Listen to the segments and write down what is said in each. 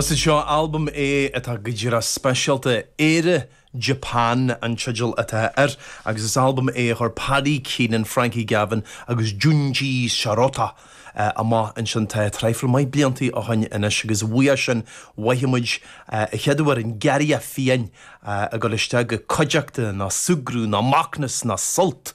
Is é seo albam é atá go díreach speisialta. Éire Japan an teideal atá air agus is albam é a chuir Paddy Keenan, Frankie Gavin agus Junji Shirota amach ansin tá traidhfil maith blianta ó shoin anois agus uaidh sin bhfaighfidh muid a chéad uair an giorria fiáin ag dul isteach go cuideachta ná súgradh ná macnas ná sult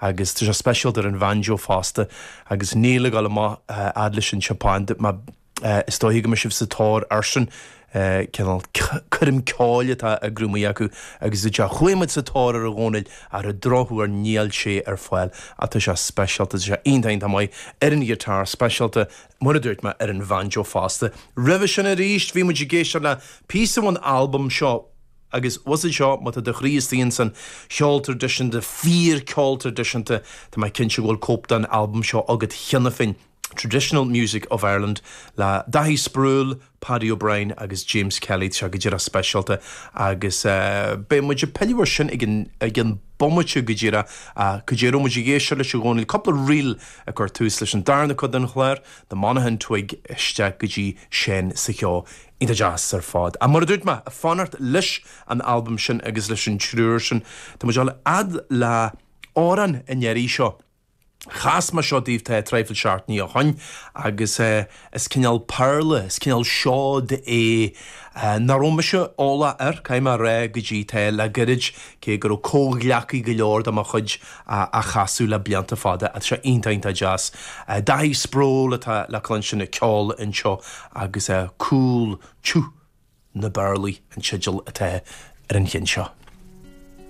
Agus tá sé speisialta ar an bhanjo fosta, agus níl ag dul amach fhad leis an tSeapáin, is dóiche go mbeidh sibh sa tóir airsean, cineál coirm ceoil atá á grúmaigh acu, agus is ea, chuaigh muid sa tóir air, a Dhónaill, ach ar an drochuair níl sé ar fáil, ach tá sé speisialta, tá sé iontach iontach maith, ar an ghiotár speisialta, mar a dúirt mé, ar an bhanjo fosta. Roimhe sin arís, bhí muid ag éisteacht le píosa ón albam seo, Agus usaid seo, má tá do chroí istigh ins an cheol tradisiúnta, fíor ceol tradisiúnta, tá mé cinnte go bhfuil cóip den albam seo agat cheana féin, Traditional Music of Ireland le Daithí Sproule, Paddy O'Brien agus James Kelly, tá sé go díreach speisialta agus beidh muid ag pilleadh ar sin ag an bomaite go díreach ach caidé a raibh muid ag éisteacht leis, a Dhónaill, cúpla ríl ag cur tús leis an darna cuid den chlár, The Monaghan Twig isteach go dtí Seán sa Cheo. Iontach deas ar fad. Ach mar a dúirt mé, ag fanacht leis an albam sin agus leis an triúr sin, tá muid ag dul a fhad le amhrán an iarraidh seo. Chas mé seo daoibh tá traidhfil seachtainí ó shoin, agus is cineál péarla, is cineál seoid é nach raibh mise eolach air, caithfidh mé a rá, go dtí tá le goirid, cé go raibh comhghleacaithe go leor de mo chuid, á chasadh le blianta fada. Tá sé iontach, iontach deas. Daithí Sproule atá le cluinstin ag ceol anseo agus Cúl Tiubh na bPéarlaí an teideal atá ar an cheann seo.